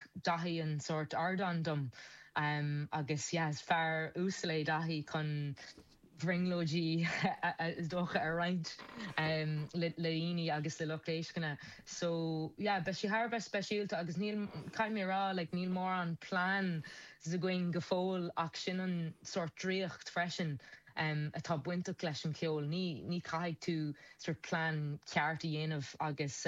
dtugann Daithí an sórt ardáin dom agus yeah is fear uasal é Daithí chun bhrionglóidí is dócha a roinnt le daoine agus le lucht éisceana so yeah beidh sí thar a bheith speisialta agus níl caithfidh mé a rá like níl mórán plean againn go fóill ach sin an sórt draíocht freisin atá bainteach leis an cheol ní caithfidh tú sort plean ceart a dhéanamh agus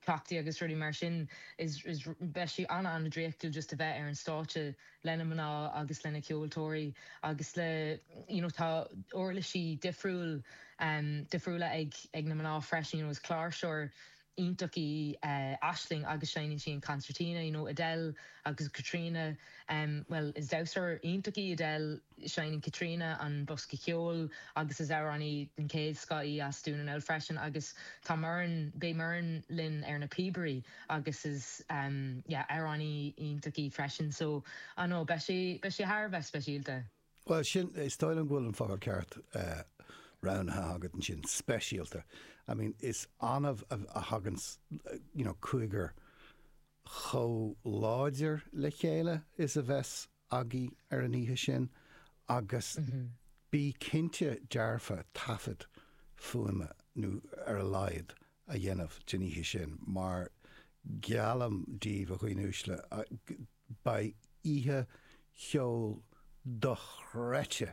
cleachtaí agus rudaí mar sin. Is beidh sí an-an-draíochtúil just a bheith ar an stáitse leis na mná agus leis na ceoltóirí agus le you know tá uirlisí difriúil em difriúla ag ag na mná freisin you know is cláirseoir iontach í eh Aisling agus seinneann sí an concertina you know Edel agus Caitríona em bhuel is damhsóir iontach í Edel Seinneann Caitríona an bosca ceoil agus is amhránaí den chéadscoth í as Dún na nGall freisin agus tá Muireann, beidh Muireann linn ar na píobairí agus is yeah amhránaí iontach í freisin so I know beidh sé, beidh sé thar a bheith speisialta. Bhuel sin, is dóigh liom go bhfuil an focal ceart roghnaithe agat ansin, speisialta. I mean is annamh a thaganns you know cúigear chomh láidir le chéile is a bheas agaibh ar an oíche sin agus bí cinnte dearfa taifead fuaime ar a laghad a dhéanamh den oíche sin mar geallaim díbh a dhaoine uaisle beidh oíche cheoil dochreidte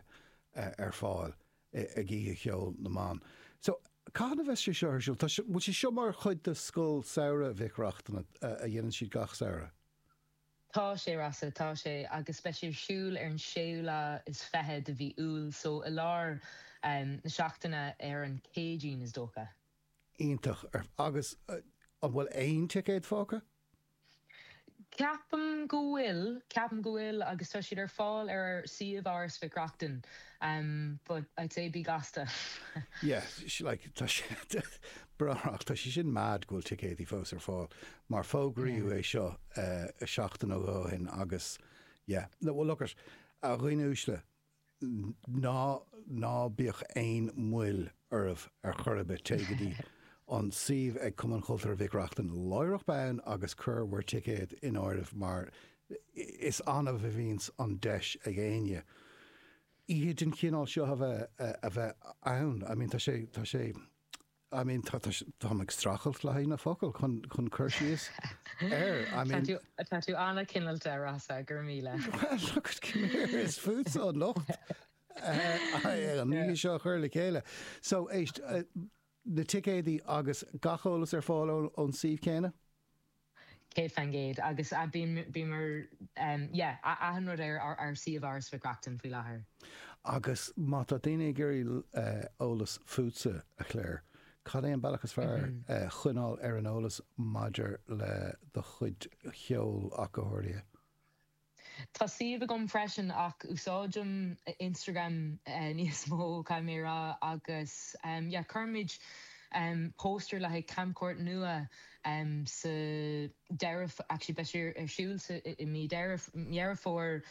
ar fáil ag Oíche Cheoil na mBan. So, cathain a bheas sé seo ar siúl? Tá sé, bhfuil sé seo mar chuid de Scoil Samhraidh Mhic Reachtain a dhéanann siad gach samhradh? Tá sé, Rossa, tá sé, agus beidh sé ar siúl ar an séú lá is fiche de mhí Iúil, so i lár na seachtaine ar an Céadaoin is dócha. Iontach. Agus an bhfuil aon ticéad fágtha? Ceapaim go bhfuil, ceapaim go bhfuil agus tá siad ar fáil ar suíomh Áras Mhic Reachtain but I'd say bí gasta. Yeah, like, tá sé, brách, tá sé sin mad go bhfuil ticéadaí fós ar fáil mar fógraíodh é seo seachtain ó shin agus yeah, no, well look it, a dhaoine uaisle, ná ná bíodh aon mhoill oraibh ar chor ar bith, téigh go dtí an suíomh ag Cumann Cultúrtha Mhic Reachtain láithreach bonn agus cuirigí bhur ticéad in áireamh mar is annamh a bhíonns an deis ag éinne oíche den chineál seo a bheith a bheith ann. I mean tá sé, tá sé. I mean, tá, tá, táim ag streachailt le haghaidh na focal chun, chun cur síos air, I mean. Tá tú, tá tú an-chineálta, Rossa, go raibh míle. Well, look, come here, is tusa an locht an oíche seo a chur le chéile. So, éist, na ticéadaí agus gach eolas ar fáil ón, ón suíomh céanna? Céad faoin gcéad. Agus bíonn ar, yeah, achan rud ar ár suíomh Áras Mhic Reachtain faoi láthair. Agus má tá daoine ag iarraidh eolas fútsa, a Clare, cad é an bealach is fearr choinneáil ar an eolas maidir le do chuid cheoil ach go háirithe? Tá suíomh agam freisin ach úsáidim Instagram níos mó caithfidh mé a rá agus yeah cuirimid póstaeir le haghaidh camchuairt nua sa deireadh actually beidh sé ar siúl sa i mí Deireadh Dheireadh Fómhair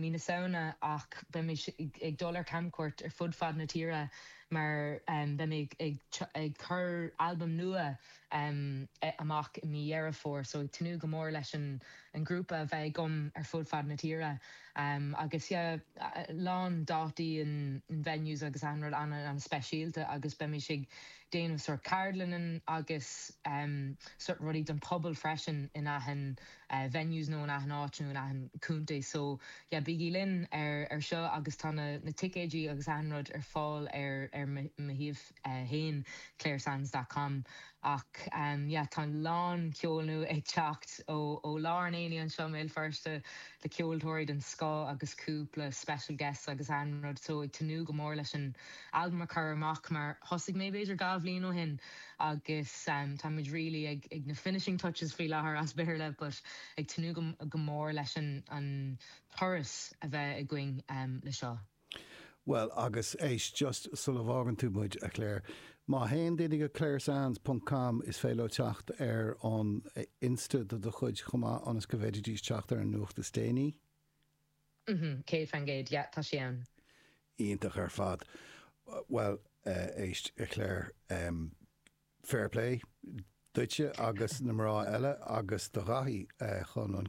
mí na Samhna ach beidh muid ag dul ar camchuairt ar fud fad na tíre mar beidh mé ag ag cur albam nua amach i mí Dheireadh Fómhair so ag tnúth go mór leis an an grúpa a bheith agam ar fud fad na tíre agus yeah lán dátaí and venues agus achan rud ana ana speisialta agus beimis ag déanamh sort ceardlanna agus sort rudaí don pobal freisin in achan venues nó in achan áit nó in achan contae so yeah bígí linn ar ar seo agus tá na na ticéidí agus achan rud ar fáil ar ar mo shuíomh. fhéin claresands dot com Ach yeah tá a lán ceol nua ag teacht ó lár an aonaigh anseo i mBéal Feirste le ceoltóirí den scoth agus cúpla special guests agus achan rud so ag tnúth go mór leis an albam a chur amach mar thosaigh mé b'fhéidir dhá bhliain ó shin agus táimid really ag na finishing touches faoi láthair as Béarla but ag tnúth go mór leis an turas a bheith againn le seo. Bhuel, agus éist, just sula bhfágann tú muid, a Clare, má théann daoine go claresands ponc com is féidir leo teacht ar an Insta de do chuid chomh maith ionas go bhféadfaidís teacht ar an nuacht is déanaí. Umhm, céad faoin gcéad, yeah, tá sí ann. Iontach ar fad. Bhuel, éist, a Clare, em, fair play duitse agus na mná eile agus do Dhaithí chun an.